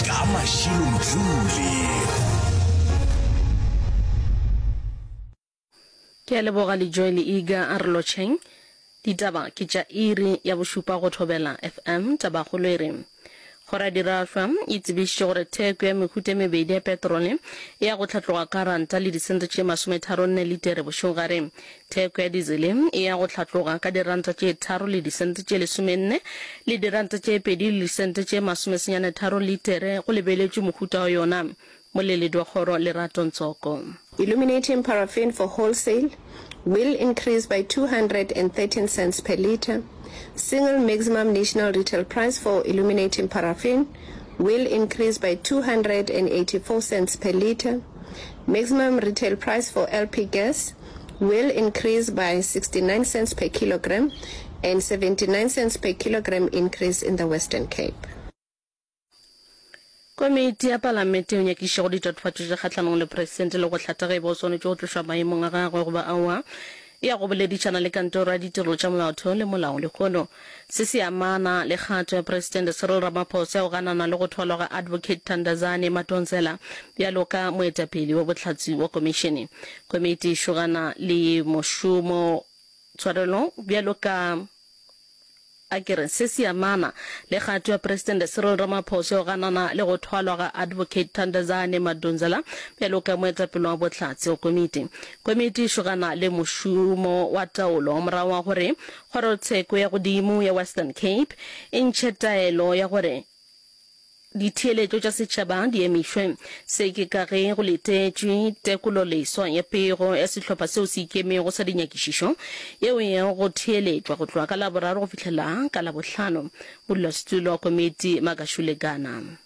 ka mašilo mthuli Ke a leboga Lejoel Iga a re lotšheng. Ditaba ke tša iri ya bošupa go Thobela FM. Tabakgolo e re, Kgoro ya Dirahlwa e tsebišitše gore theko ya mehuta e mebedi ya petrole e ya go hlatloga ka ranta le disente tše masometharo nne litere bošegare. Theko ya dizele e ya go hlatloga ka diranta tše tharo le disente tše lesomenne le diranta tše pedi le disente tše masomesenyane tharo litere, go lebeletšwe mohuta wa yona. Moleledi wa kgoro Lerato Ntsoko. Illuminating paraffin for wholesale will increase by 213 cents per litre, single maximum national retail price for illuminating paraffin will increase by 284 cents per litre, maximum retail price for LP gas will increase by 69 cents per kilogram and 79 cents per kilogram increase in the Western Cape. Komiti ya Palamente o nyakiše go ditatofatšo tše kgahlanong le Presidente le go hlatha ge e ba o swanetše go tlošwa maemong a gagwe goba aowa, ya go boledišana le Kantoro ya Ditirelo tša Molaotheo le Molao-lehono. Se se amana le kgato ya Presidente Cyril Ramaphosa ya go ganana le go thwalwa ga Advocate Thandazani Madonsela bjalo ka moetapele wa bohlatse wa Komišene. Komiti e šogana le mošomo tshwarelong bjalo ka A ke re se se amana le kgato ya Presidente Cyril Ramaphosa ya go ganana le go thwalwa ga Advocate Thandazani Madonsela bjalo ka moetapele wa bohlatse wa komiti. Komiti e šogana le mošomo wa taolo morago ga gore Kgorotsheko ya godimo ya Western Cape e ntšhe taelo ya gore ditheeletšo tša setšhaba di emišwe. Se ke ka ge go letetšwe tekololeswa ya pego ya sehlopha seo se ikemego sa dinyakišišo yeo e yago go theeletšwa go tloga ka Laboraro go fihlela ka Labohlano. Modulasetulo wa komiti Makashule Gana.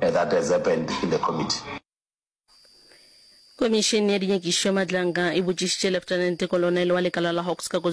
That has happened in the committee. Komišene ya Dinyakišo ya Matlanka e botšišitše Lieutenant Kolonele wa lekala la Hawks ka KwaZulu-Natal,